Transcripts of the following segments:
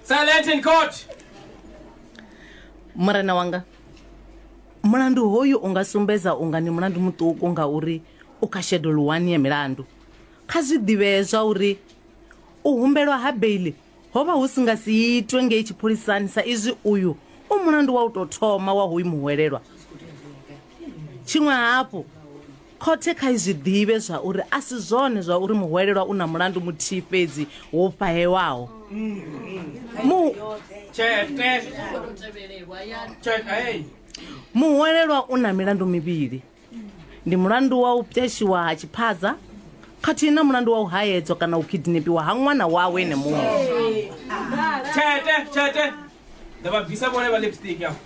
Silent in court. murena wanga mulandu hoyu u nga sumbedza unga ni mulandu muṱuku ngauri u kha shedulu wani ya milandu kha zwi ḓivhee zwa uri u humbelwa ha beili Ho vha hu si nga si itwe ngei tshipholisani sa izwi uyu u mulandu wa u tou thoma wa hoyu muhwelelwa. Tshiṅwe hafhu, khothe kha i zwi ḓivhe zwa uri a si zwone zwa uri muhwelelwa u na mulandu muthihi fhedzi wo fhahewaho. Mu. Tshete. Tshete. Muhwelelwa u na milandu mivhili. ndi mulandu wa u pweshiwa ha tshiphaza khathihi na mulandu wa u haedzwa kana u kidnepiwa ha ṅwana wawe ene muṋe tshete tshete nda vha bvisa vhone vha lipstick afho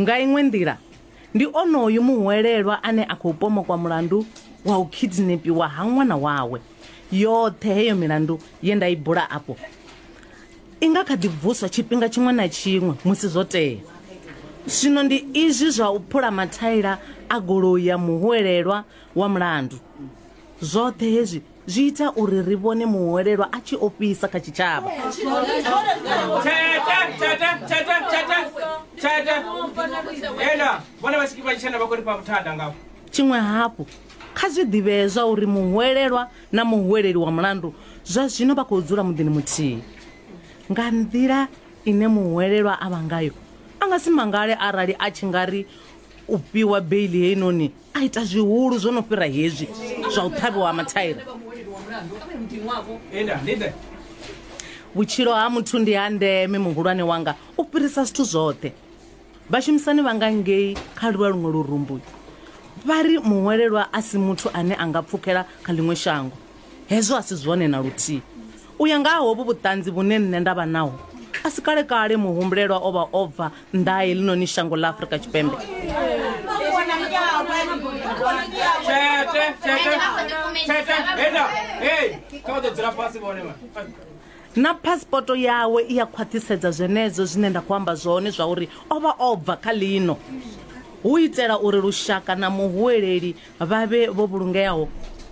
nga iṅwe nḓila ndi onoyu muhwelelwa ane a khou pomokwa mulandu wa u kidnepiwa ha ṅwana wawe yoṱhe heyo milandu ye nda i bula afho I nga kha ḓi vuswa tshifhinga tshiṅwe na tshiṅwe musi zwo tea. Zwino ndi izwi zwa u phula mathaila a goloi ya muhwelelwa wa mulandu. Zwoṱhe hezwi zwi ita uri ri vhone muhwelelwa a tshi ofhisa kha tshitshavha. Tshiṅwe hafhu, kha zwi ḓivhee zwauri muhwelelwa na muhweleli wa mulandu zwa zwino vha khou dzula muḓini muthihi. Nga nḓila ine muhwelelwa a vha ngayo, a nga si mangale arali a tshi nga ri u fhiwa beili heinoni a ita zwihulu zwo no fhira hezwi zwa u ṱhavhiwa ha mathaira. Vhutshilo ha muthu ndi ha ndeme, muhulwane wanga, u fhirisa zwithu zwoṱhe. Vhashumisani vha nga ngei kha lwa luṅwe lurumbu vha ri muhwelelwa a si muthu ane a nga pfukela kha ḽiṅwe shango. Hezwo a si zwone na luthihi. U ya nga ha hovhu vhuṱanzi vhune nṋe nda vha naho, a si kale-kale muhumbulelwa o vha o bva nnḓa ha heḽinoni shango ḽa Afrika Tshipembe. Na phasipoto yawe i a khwaṱhisedza zwenezwo zwine nda khou amba zwone zwauri o vha o bva kha ḽino. Hu itela uri lushaka na muhuweleli vha vhe vho vhulungeaho,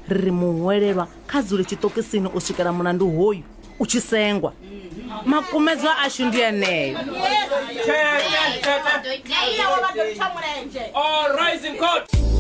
ri ri muhuwelelwa kha dzule tshiṱokisini u swikela mulandu hoyu u tshi sengwa. Makumedzwa ashu ndi eneo. All rise in court.